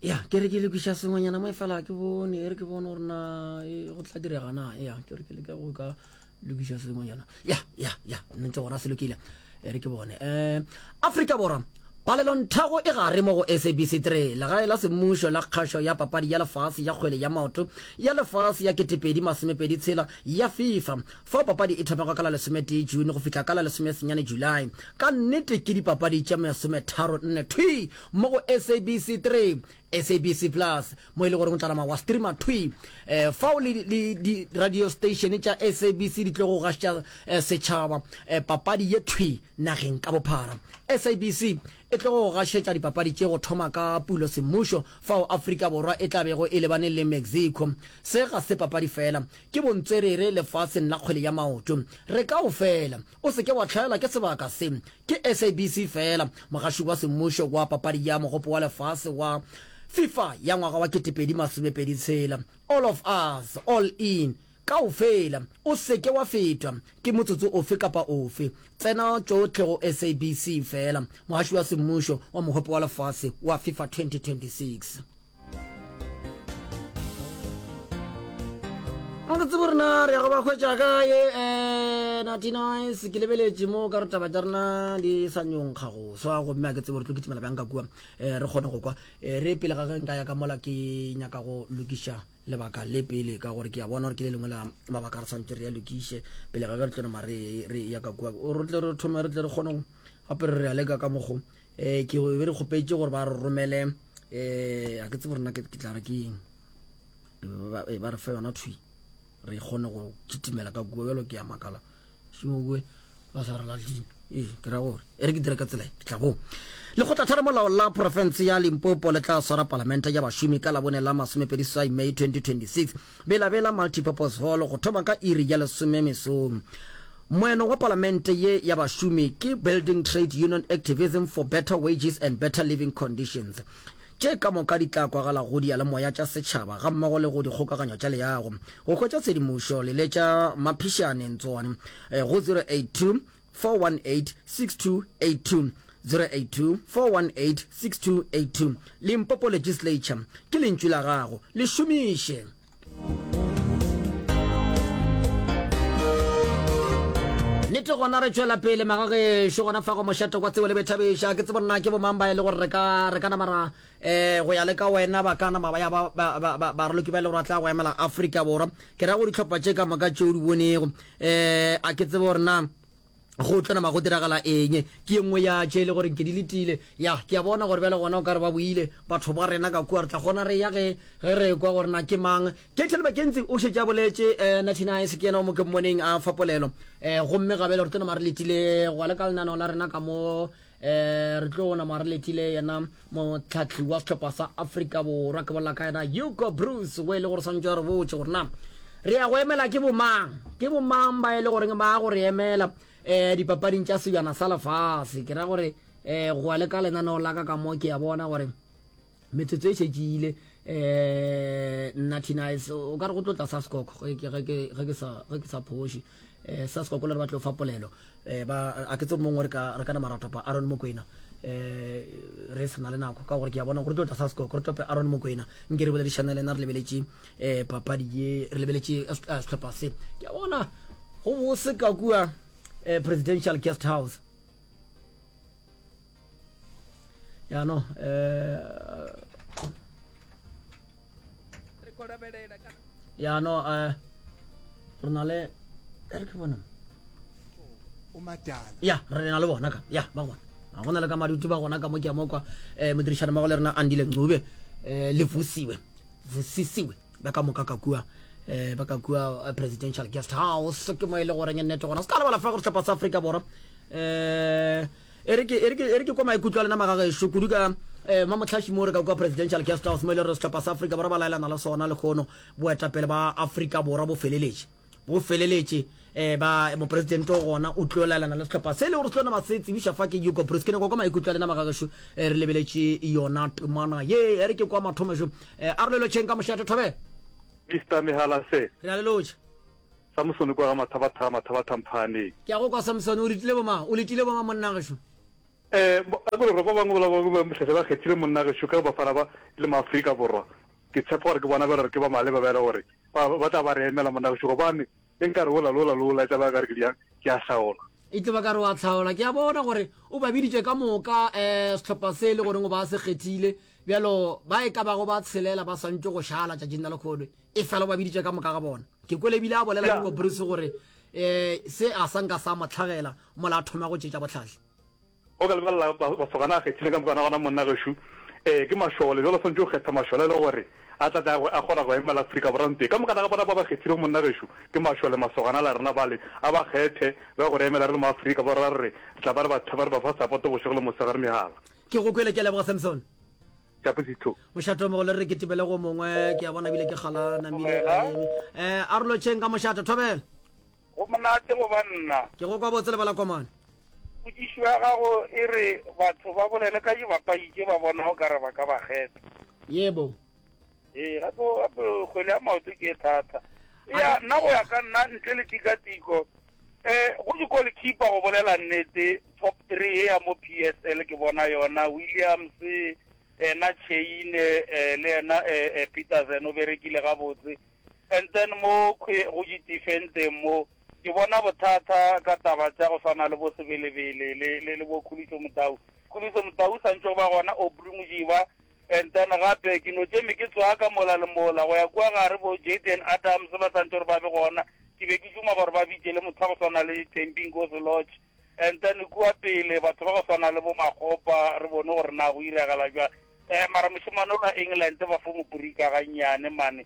ya ke re ke le kwiša sengwenyana mo e fela ke bone e re ke bone gore na e, go tla direga na ya ke re ke le ka go ka lokiša sengwenyana ya ya ya ntse gona se lokile e re ke bone um afrika borwa palelonthago e gare mo go sabc 3 legae la semmušo la kgašo ya papadi ya lefase ya kgwele ya maoto ya lefase ya 2026 ya fifa Fao papadi e thomego ka la lesometee June go fihla ka la lesomesenyane July. Ka nnete ke dipapadi tše masometharo nne thwi mo go SABC 3, SABC Plus, mo e le goreng o tla nama wa streama thwi eh, fao le, le diradiosteišene tša SABC di tlogo gašetša eh, setšhaba eh, papadi ye thwi nageng ka bophara. SABC e tlogo go gašetša dipapadi tše go thoma ka Pulo semmušo fao Afrika Borwa e tla bego e lebane le Mexico. Se ga se papadi fela, Ke bontswerere lefaseng la kgwele ya maoto. Re ka o fela. O se ke wa hlaelwa ke sebaka se. Ke SABC feela, mogaši wa semmušo wa papadi ya Mogopo wa Lefase wa Fifa ya ngwaga wa ketepedi masomepedi tshela. All of us, all in. Kaofela. O se ke wa fetwa ke motsotso ofe kapa ofe. Tsena tšohle go SABC feela, mogaši wa semmušo wa Mogopo wa Lefase wa Fifa 2026. a ke tsebo rena re ya go ba hwetša kae um eh, natinice ke lebeletše mo ka re taba tša rena di sa nyonkga go swa gomme a ke tsebo re tlo kitimela bjang ka kua um re kgone go kwa um re pele ga ge nka ya ka mola ke nyaka go lokiša lebaka le pele ka gore ke ya bona gore ke le lengwe la mabaka re tshwanetse re ya lokiše pele ga ge re tlone mare re ya ka kua re tle re thome re tle re kgone gape re re ya leka ka mokgo eh ke be re kgopetše gore ba re romele eh a ke tsebo rena ke tla re ke eng ba eh, re fe yona thwi re kgone go kitimela ka kua bjalo ke ya makala šimoe ba sa re latlile ee ke ra gore e re ke dire ka tsela e, ke tla bong lekgotlathara molao la porofense ya limpopo le tla swara palamente ya bašomi ka labone la masomepedi sai may 2026 Bela-Bela Multipurpose Hall go thoma ka iri ya lesome mesong. Moeno wa Palamente ye ya Bašomi ke Building Trade Union Activism for Better Wages and Better Living Conditions, tše ka moka di tla kwagala go diyalemoya tša setšhaba gammogo le go dikgokagano tša leago. Go hwetša tshedimošo leletša Maphišane Ntswani go 082 0826282 Limpopo Legislature ke lentšu la gago le šomiše nete gona re tšwela pele magagešo gona fa go mošate kwa tsebo le bethabeša ke tsebo nna ke bomang ba e le gore re ka re ka namara Ee, go ya le ka wena ba ka nama ba ya baraloki ba le gore ba tla go emela Afrika Borwa. Ke ra go ditlhopha tše ka moka tše o di bonego. Ee, a ke tsebe gore na go tlo nama go diragala eng ke ye nngwe ya tše e le gore ke di letile ya ke a bona gore bjale gona o ka re ba boile batho ba rena ka kua re tla kgona re ya ge ge re kwa gore na ke mang ketel bakentsi o šetša boletše um eh, natinice ke yena o mo ke mmoneng a fapolelo um eh, gomme gabele re tlo nama re letile go le ka lenaneo la rena ka mo eh re tlo ona mare letile yena motlhatlhi wa setlhopha sa africa borwa ke bolela ka yena hugo bruce o e le gore swantse re botse gore na re ya go emela ke bomang ke bomang ba e le goreng ba go re emela um eh, dipapading tša sebjana sa lefase ke ra gore um eh, go ya le ka lenaneo la ka ka mo ke ya bona gore metsotso e šetše ile um nna tinice o ka re go tlo tla saskoko ge ke sa phoši um eh, saskoko le re ba tlo fa polelo um a ke tse mongwe re kana maratopa aron mokwena um re sena le nako ka gore ke ya bona gore tlo tla saskoko re tope aron mokwena nke re boledišana le na re lebeletše um papadi ye re lebeletše setlhopha se ke ya bona go bose ka kua presidential guest house ya no eh re go labelela ka ya no eh re na le re ke bona o matala ya re na le bona ka ya ba gona ga gona le ka madutu ba gona ka mo ke mo kwa eh modirišana mmogo le rena andile ncube eh le vusiwe vusisiwe ba ka moka ka kua eh ba ka kua eh, presidential guest house ke mo e le goreng nnete gona se ka lebala fa gore sehlopha sa afrika borwa eh E re ke, e re ke, e re ke kwa maikutlo a lena magagešo, kudu ka eh, mamohlaši moo re ka kwa Presidential Guest House, mo e le gore sehlopha sa Afrika Borwa ba laelana le sona lehono, boetapele ba Afrika Borwa bo feleletše, bo feleletše, eh, ba, Mopresidente o gona, o tlo laelana le sehlopha se, e le gore se tlo nama se tsebiša fa ke Hugo Broos. Ke nyakwa kwa maikutlo a lena magagešo, eh, re lebeletše yona temana ye, e re ke kwa mathomo šo, eh, a re lelotšheng ka mošate, Thobela. Mister Mehala Sir. Re a lelotšha. Samsone kwa ga Mathabatha, Mathabatha Mphaaneng. Ke a go kwa Samsone, o letile bomang? O letile bomang monna gešo? Ee, a ke re ba bangwe bola ba ba mohlehla ba kgethile monna gešo ka Bafana ba le Maafrika Borwa. Ke tshepa gore ke bona ba e le gore ke ba maleba ba e le gore ba ba tla ba re emela monna gešo gobane e nka re wola le wola le wola e tla ba e ka re ke bjang ke a hlaola. E tlo ba ka re wa hlaola. Ke a bona gore o ba biditše ka moka um sehlopha se e le goreng o ba se kgethile bjalo ba e ka bago ba tshelela ba swantše go šala tšatšing la lekgolo e fela o ba biditše ka moka ga bona. Ke kwele ebile a bolela Nico Bruce gore um se a sa nka sa mo hlagela mola a thoma go tšetša bohlatse. O ka lebelela masogana a kgethile ka mokwana gona monna gešo um ke mašole bjalo swantše o kgetha mašole e le gore a tla tla a kgona go emela Afrika Borwa ntee ka mokana ga bona ba ba kgethilego monna gešo ke mašole masogana la rena bale a ba kgethe ba go re emela re le mo Afrika Borwa re re tla ba re ba thaba re ba fa sapoto bošego le mosegare mehala Ke go kwele ke a leboga Samson. Chapuzitlo. Mošate o mogolo re ketibele go mongwe ke ya bona bile ke kgala namile a eme eh a rlo tšheng ka mošate thobela go monate go ba nna ke go kwa botse lebala komane putsišo ya gago e re batho ba bolele ka dibapadi tše ba bonago ka re ba ka ba kgetha yebo ee gape gape kgwele ya maoto ke e thata ya nna go ya ka nna ntle le tikatiko Go di goalkeeper go bolela nnete top three ye ya mo PSL ke bona yona Williams ena Chaine le ena Petersen o berekile gabotse and then mo go di defendeng mo ke bona bothata ka taba tša go swana le bo Sebelebele le le bo Khuliso Motau Khuliso Motau sa ntse o ba gona Aubrey Modiba And then gape ke no tšeme ke tswa ka mola le mola go ya kua gare bo Jayden Adams ba santse gore ba be gona, ke be ke duma gore ba bitše le motho wa go swana le Thembi Nkosi Lorch. And then kua pele batho ba go swana le bo Makgopa re bone gore na go iragala jwang. Eh mara mošemane o lwa England ba fo mo burika gannyane mane.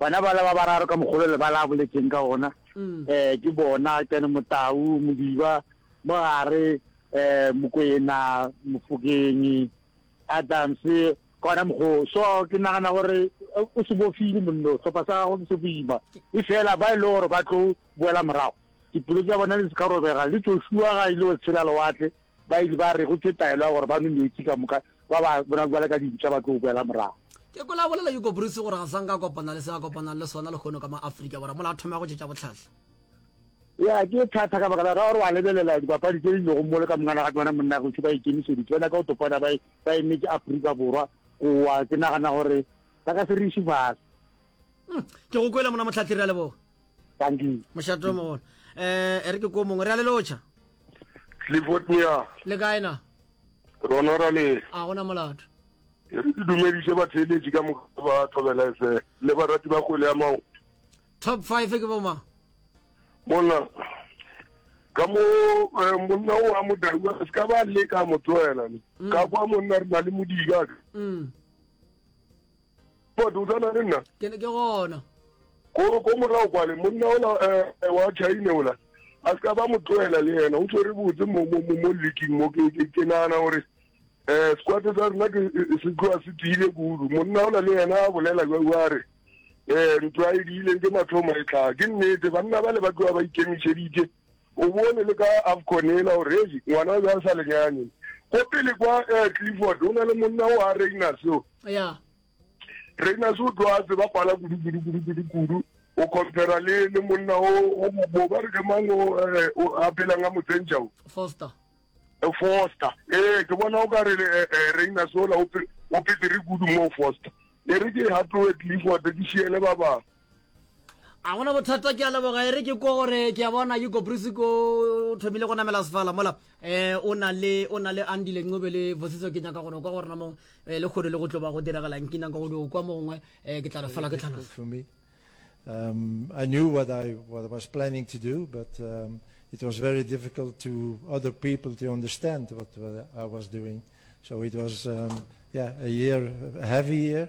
Bana bala ba bararo ka mogolo le bala boletseng ka ona eh ke bona kana motau modiba mogare eh mokwena mofokenyi Adams kona mogo so ke nagana gore o se bofile monno tlhopha sa gago se boima e fela ba ile gore ba tlo boela morago dipulo tsa bona le se ka robega le tsošua ga ile go tshela lewatle Ba ile ba re go tše taelo ya gore ba nwe meetse ka moka, ba ba bona bjale ka dintša ba tlo boela morago. Ke kwele a bolela Hugo Broos gore ga sa nka a kopana le se a kopanang le sona lehono ka mo Afrika Borwa mola a thoma go tšetša bohlahla. Ya, ke thata ka baka la gore wa lebelela dipapadi tše di lego mole ka mongana ga ke bona monna gešo ba ikemišeditše ba nyaka go topana ba e emetše Afrika Borwa gowa ke nagana gore ba ka se re iše fase. Ke go kwele mona Mohlathiri, a leboga. Bandi. Mošato mogolo. Eh, e re ke ko mongwe re a le lotšha. Clifford Mia. Le kae na? Rona ra le. A gona molato. E re ke dumediše batheeletši ka moka ba thobela efe le barati ba kgwele ya mao. Top 5 ke bo mang? Monna ka mo eh, monna o a modau a se ka ba le ka mo tloela mm. ka kwa monna re na le modika mm. but o tsana le nna ke ke gona ko ko morago kwale monna ola eh, wa chaine ola a se ka ba mo tloela le yena o tshwere botse mo mo mo mo leaking mo ke ke ke nana gore eh squate sa rena ke se tloa se tiile kudu monna ola le yena a bolela jwa wa re eh ntlo a e diileng ke mathomo e tla ke nnete banna ba le ba tloa ba ikemišeditše o bone le ka afconela gore e ngwana o ja sa lenyane ko pele kwa eh, clifford o na le monna o a reina seo ya Reiners o tlo a tseba pala kudu kudu kudu kudu kudu o compara le le monna o o bo ba re ke mang o eh, o a phelang a motsentša o foster Eh, foster ee ke bona o ka re eh, eh, reina sola o pe- o petere kudu mo foster e re ke hatoe clifford ke šiele ba bangwe a gona bothata ke a leboga e re ke kwa gore ke a bona ke koprisi ko o thomile go namela sefala mola um o na le o na le andile ncobe le vosiso ke nyaka gore o kwa gore na mo eh, le kgole le go tlo ba go diragalang ke nyaka godi o kwa mo gongwe um ke tla re fela ke tlhalosa Um, I knew what I, what I was planning to do, but um, it was very difficult to other people to understand what, what I was doing. So it was, um, yeah, a year, a heavy year.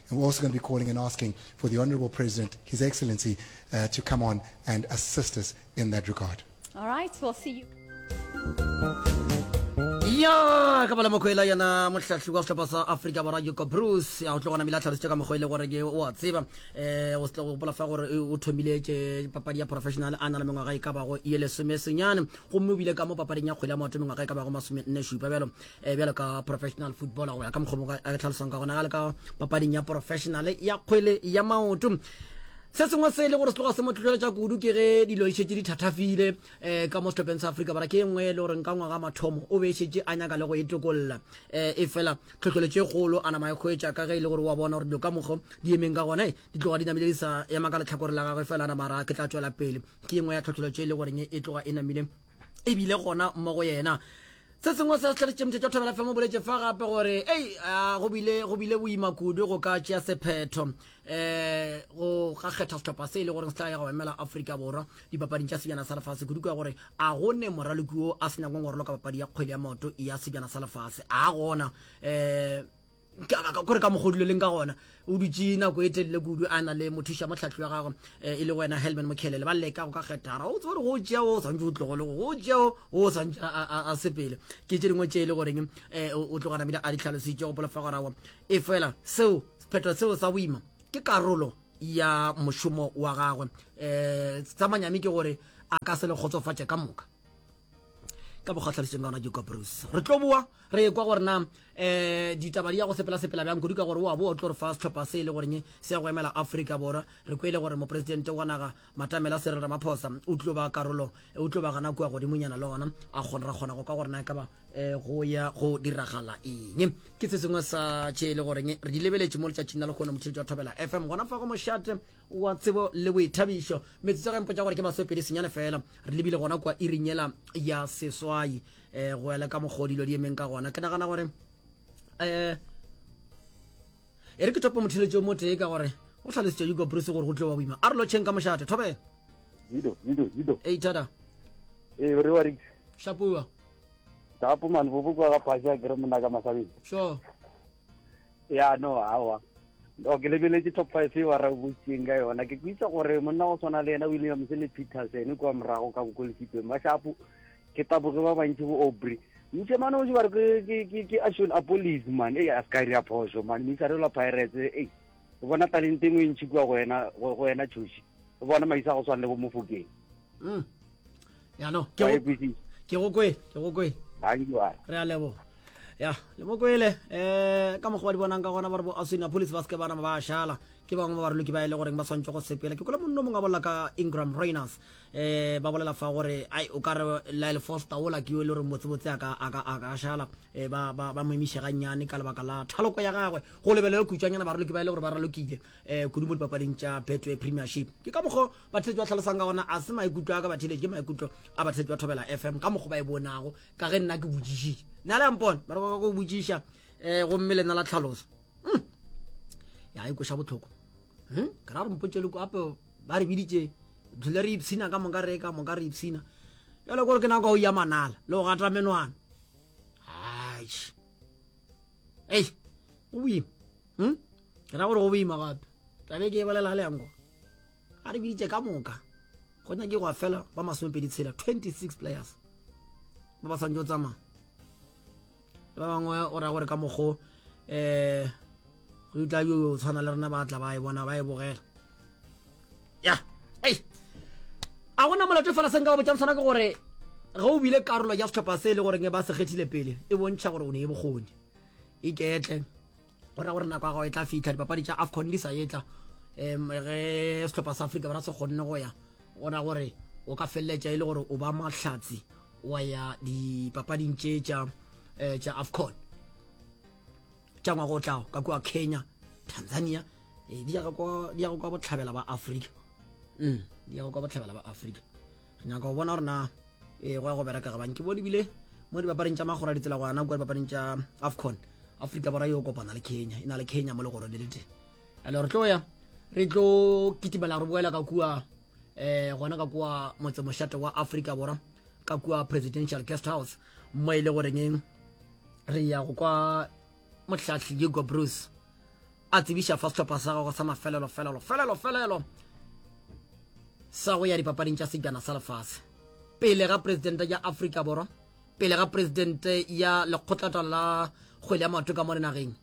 And we're also going to be calling and asking for the Honorable President, His Excellency, uh, to come on and assist us in that regard. All right, we'll see you. ya ka bala mokgwela yena mohlahli wa setlhopha sa africa borwa yuko bruce a go tlo gona mile a tlhalositse ka mokgwa e le gore ke o a tseba um o setle go gopola fa gore o thomile ke papadi ya professional a na le mengwaga e ka bago ye lesomesenyane gomme o bile ka mo papading ya kgwele ya maoto mengwaga e ka bago masome nne šupa bjalo eh, bjalo ka professional footballer go ya ka mokgomo a re tlhalosang ka gona ga le ka papading ya professional ya kgwele ya maoto se sengwe se e le gore se tloga se mo tlhotlheletša kudu ke ge dilo e šetse di thathafile um eh, ka mo setlhopheng sa afrika bara ke e nngwe e le gore ka ngwaga mathomo o be e šetse a nyaka le go e tokolola um e fela tlhotlheletšo e kgolo a nama e kgwetša ka ge e le gore wa bona gore dilo ka mokgo di emeng ka gone eh, di tloga di namile di sa ema ka letlhakore la gagwe fela a namara ke tla tswela pele ke e nngwe ya tlhotlheletšo e le goreng e tloga e namile e bile gona mo go yena se sengwe se setlhale tšemthe tša thobela femo boletse fa gape gore ei go bile go bile boima kudu go ka tšea sephetho um go ga kgetha setlhopha se e le goreng se tla ya go emela aforika borwa dipapading tša sebjana sa lefase kudu ka gore a go ne moraloki o a se nyakong go roloka papadi ya kgwele ya maoto ya sebjana sa lefase a gona um kore ka mokgwa o duleleng ka gona o dutse nako e telele kudu a na le mothuša motlhahli wa gagwe eh, e le wena helman mokhelele ba leka go ka kgethara o tsebore go tšea o swantse o tlogole go tšea o swantse a sepele ke tše dingwe tše e le goreng um eh, o tloga namile a di tlhalositše go polofa gorago e fela seo sephetho seo sa boima ke karolo ya mošomo wa gagwe um tsamanyami ke gore a ka se le kgotsofatše ka moka ka bokgatlhaliseng ka gona ke coprus re tlo boa re ekwa gore na um eh, ditaba di ya go sepela-sepela bjang kudu ka gore wa boa o tlo re fa setlhopha se e le goreng se ya go emela aforika borwa re kwele gore moporesidente wa naga matamela serel ramaphosa o tlo ba karolo o tlo ba gana kua godimonyana le gona a kgona ra kgona go ka gore na e ka ba um go ya go diragala eng ke se sengwe sa tše e le goreng re di lebeletše mo letšatšing la lekgone motheletši wa thobela fm gona fa go mošate wa tsebo le boithabišo. Metsotso ya ka e mpotša gore ke masopedi senyane fela. Re lebile gona kua iring yela ya seswai um go ya le ka mokgwa o dilo di emeng ka gona. Ke nagana gore um e re ke tope motheletši o motee ka gore go tlhalositša yuko bruce gore go tlo wa boima a re lotšheng ka mošate thobela Zido, Zido, Zido. Hey, Tada. Hey, where are you? Shapua. Shapua, man. Vuvu kwa ga pasha, kere muna ka masabini. Sure. ya no awa o ke lebeletse top five e wa rabotseng ka yona ke kwitsa gore monna go tshwana le yena williams le peterson kwa morago ka bokolesipeng ba shapo ke taboge ba bantši bo obry ntse mane o jebare ke action apolis man e a skari ya phoso man mme sarelwa pirates e o bona talente engwe e ntšhi kua go wena tšhoši o bona maisa go tshwana le bo mofokeng mm. ya no ke go kwe ke go kwe re a leboga ya le mo kwele um ka mokgwa ba di bonang ka gona ba re bo aswina police ba seke bana ba šala ke bangwe ba baroloki ba e le goreng ba swantse go sepela ke kole monno mongwe a bolela ka ingram rainers um ba bolela fa gore ai o ka re lyle foster ola ke yo e le goreng botsebotse a ka šala um ba mo emiše gannyane ka lebaka la thaloko ya gagwe go lebelele kutswanyana baroloki ba e le gore ba ralokile um kudu mo dipapading tša betway premiership ke ka mokgwa bathetši ba tlhalosang ka gona a se maikutlo a ka batheletši ke maikutlo a bathetši ba thobela fm ka mokgwa ba e bonago ka ge nna ke botsišitše na le yampona ba re ba go botsiša um eh, gomme lena la tlhaloso hmm. ya e koša botlhoko hmm? ke ra re mpotsele ko ape ba re biditše dule re ipshina ka moka re ka moka re ipshina jale kore ke nako o ya manala le go gata menwana ei go boima hm ke ra gore go boima gape tlabe ke e bolela ga leyanko a re biditse ka moka go nyake gwa fela ba masomepedi tshela 26 players ba ba swantse go tsamaya le ba bangwe o ra gore ka mokgo um go tla yo tshwana le rena ba tla ba e bona ba e bogela ya ei a gona molato e fela se nka o botšang sona ke gore ge o bile karolo ya setlhopha se e le goreng ba se kgethile pele e bontšha gore o ne e bokgoni iketle go ra gore nako ya gago e tla fitlha dipapadi tša afcon di sa etla um ge setlhopha sa afrika bara se kgonne go ya go ra gore o ka feleletša e le gore o ba mahlatsi wa ya dipapading tše tša eh, afcon tša ngwaga o tlago ka kua kenya tanzania eh, di yago kwa bohlabela ba afrika mm, di yago kwa bohlabela ba afrika re nyaka go bona gore na eh, go ya go bereka gabang ke bone bile mo dibapareng tša magora ditsela go ana kua dibapareng tša afcon afrika borwa yo kopana le kenya e na le kenya mo legorone le teng ale re tlo ya re tlo kitimela re boela ka kua um gona ka kua motsemošate wa afrika borwa ka kua presidential guest house mo e le goreng re ya go kwa mohlahli hugo bruce a tsebiša fa sehlopha sa gagwe sa mafelelo felelo felelo felelo sa go ya dipapading tša sejana sa lefase pele ga presidente ya afrika borwa pele ga presidente ya lekgotlatala la kgwele ya maoto ka mo dinageng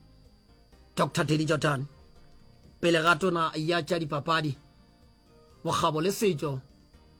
dr tedi jotan pele ga tona ya tša dipapadi bokgabo le setšo